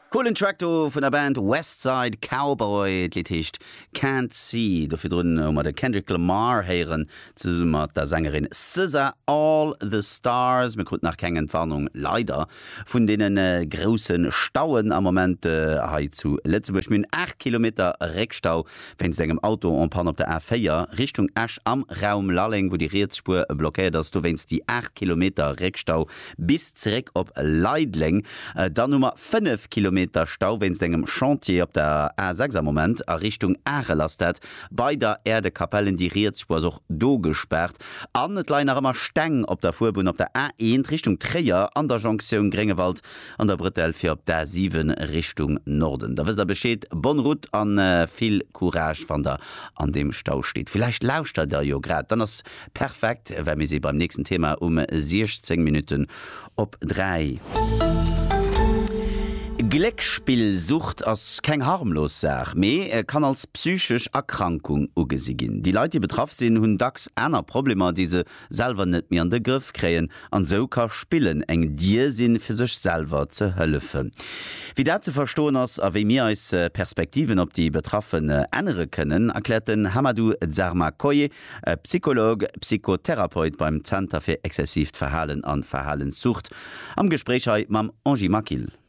Coolen Track do vun der Band West Side Cowboy. D'Lidd heescht Can't See. Do virdrun hu mer de Kendrick Lamar héieren zesumme mat der Sängerin SZA, All The Stars. Mir kruten nach keng Entwarnung, leider, vun deene grousse Stauen am Moment hei zu Lëtzebuerg. Mir hunn 8 Kilometer Réckstau Wéinst engem Auto en panne op der A4 Richtung Esch am Raum Lalleng, wou déi riets Spuer blockéiert ass, dowéinst déi 8 Kilometer Réckstau bis zeréck op Leideleng. Dann hu mer 5 Kilometer Stau wéinst engem Chantier op der A6 am Moment a Richtung Arel ass dat bei der Erdekapell. En déi riets Spuer ass och do gespaart an et leien nach ëmmer Steng op der Fuerbunn op der A1 Richtung Tréier an der Jonktioun Gréngewald an der Bretelle fir op d'A 7 Richtung Norden. Da wësst der Bescheed, bonne route an vill Courage wann der an deem Stau steet. Villäicht lauschtert der jo grad, dann ass perfekt, well mir si beim nächsten Thema um 16 Minutten op 3. Gléckspillsucht ass keng harmlos Saach, mee kann als psychesch Erkrankung ugesi ginn. Déi Leit, déi betraff sinn, hunn dacks aner Problemer, déi se selwer net méi an de Grëff kréien an esou ka Spillen eng Dier sinn fir sech selwer ze hëllefen. Wéi dat ze verstoen ass a wéi mir eis Perspektiven op déi Betraffen ännere kënnen, erkläert den Hamadou Dzarma Koye, Psycholog, Psychotherapeut beim Zenter fir exzessiivt Verhalen an Verhalenssucht am Gespréich hei mam Angie Maquil.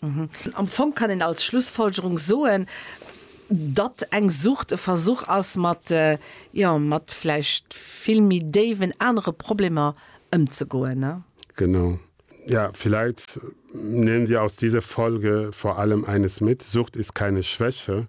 Am Fong kann een als Schlussfolgerung soen, datt eng Sucht e Versuch ass, mat, jo, mat vläicht vill méi déiwen anere Problemer ëmzegoen. Genau. Ja, vielleicht nehmen wir aus dieser Folge vor allem eines mit, Sucht ist keine Schwäche.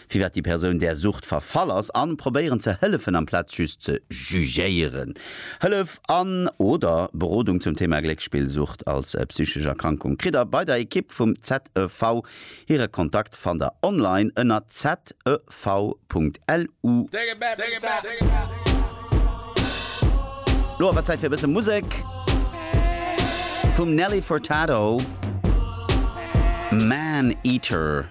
firwat déi Persoun där Sucht verfall ass a probéieren ze hëllefen amplaz just ze jugéieren. Hëllef an, oder Berodung zum Thema Gléckspillsucht als psychesch Erkrankung kritt der bei der Ekipp vum ZEV. Hire Kontakt fannt der online ënner zev.lu. Lo awer Zäit fir e bësse Musek. Vum Nelly Furtado, Man Eater.